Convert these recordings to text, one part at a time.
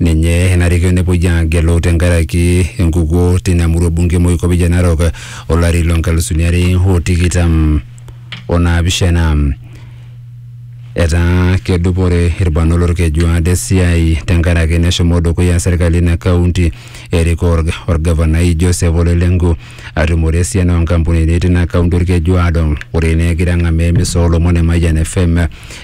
Ninye enarikino nepuoi aagelu tenkaraki enkukuo tina murua bunge Moikopicha Narok olari loo nkalusuni are o tikitam o naapishana. Etaa kedupore ilbarnot lolkeju aado esiai tenkaraki neshomo dukuya serkali ina kaunti erikoo olgavanai Joseph Ole Lenku. atumore esiana oo nkampunini tina kaunti Olkejuado. Ore ina egira ang'amaa emisa oo lomon e Mayian FM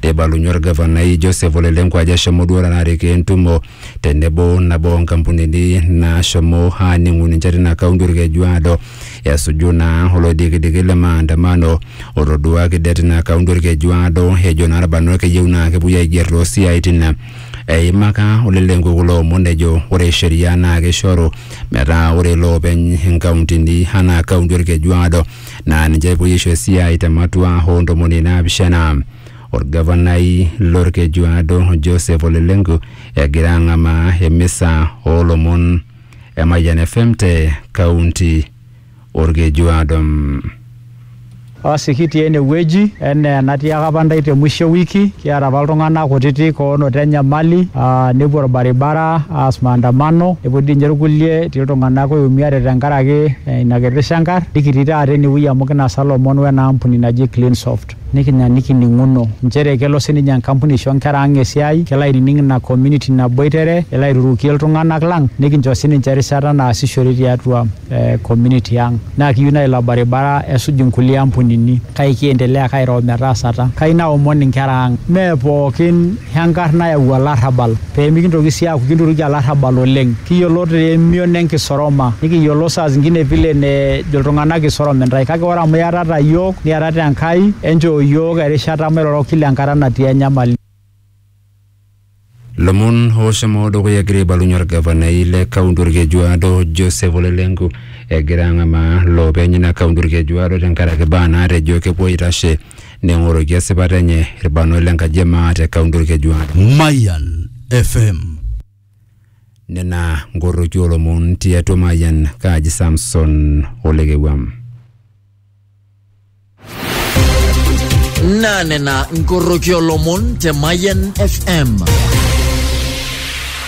neibalunye olgavanai Joseph Ole Lenku ajo eshomo duo taata arikoo entumo tenebo nabo oo nkampunini naashomo aaning'u ninche tina kaunti Olkejuado esuju naa oloidikidiki le maandamano otoduaki det tina kaunti Olkejuado ejo naa ilbarnot keyieu naa kepuoi aiger too siaaitin Eimaka olelenko kulo omon ejo ore sheria naa keishoru metaa ore loopeny inkauntini anaa kaunti Olkeju Aado naa ninche epuoi aisho esiai te matua oo ntomoni naapishana. Olgavanai lolkeju Aado Joseph Ole Lenku egira ang'amaa emisa oo lomon e Mayian FM te kaunti olkeju Adam. Basi kitii ene wueji enaa enatiaka apa ndai te mwisho e wiki, kiata apa iltung'ana kutitik oonoto enyamali aa nepuo olbaribara aas maandamano nepuo dii ninye ilkulie etii iltung'ana oiumiate tenkaraki ina kiti shangar nikitii taata ene wueji amu kinasa ilomon wena ampuni naji Cleansoft. Nikinya nikining'uno nchere kelo sii ninye enkampuni aisho nkera ang esiai, kelo ainining ina community naboitere, elo airurukie iltung'anak lang nikincho sii ninche erishata naasishore tiatua community ang. Naa kiyieu naa ilo baribara esuj inkulie ampunini kake kiendelea ake airo metaasata. Kayieu naomon inkera ang mee pookin Enkarna nayau olarrabal, pee mikintoki sii aaku kinturuki olarrabal oleng. Kiyiolo te emion e nkisoroma, nikiyiolo saa zingine vile nejo iltung'ana kisorom intae kake ore amu iatata iyiook niatata Enkai, enchoo iyiook erishata mairoro kila enkata natii enyamali. Lomon ooshomo dukuya egira aibalunye olgavanai le kaunti Olkejuado Joseph Ole Lenku egira ang'amaa loopeny ina kaunti Olkejuado tenkaraki baa naatejo kepuo aitashe Neng'oroki esipata enye ilbarnot le nkaji e maa te kaunti Olkejuado. Mayan FM. Nena nkorroki oo lomon ti atua Mayan, kaaji Samson Olekewuam. Naa nena nkorroki oo lomon te Mayan FM.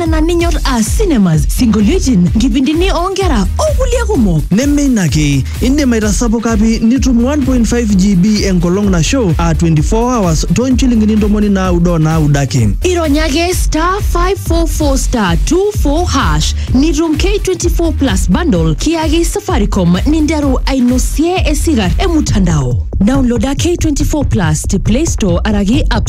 nena ninyor aa cinemas, sinkolioitin, nkipindini oonkera o kulie kumok. Neme ina ake, indim aitasapuka pi nitum 1.5 GB enkolong nasho aa 24 hours too nchilingini ntomoni naaudo o naaudo ake. Ironya ake star 544 star 24 hash nitum K24 plus bundle kiyaki Safaricom ninteru ainosie esigar e mutandao. Downloada K24 plus te Play Store araki App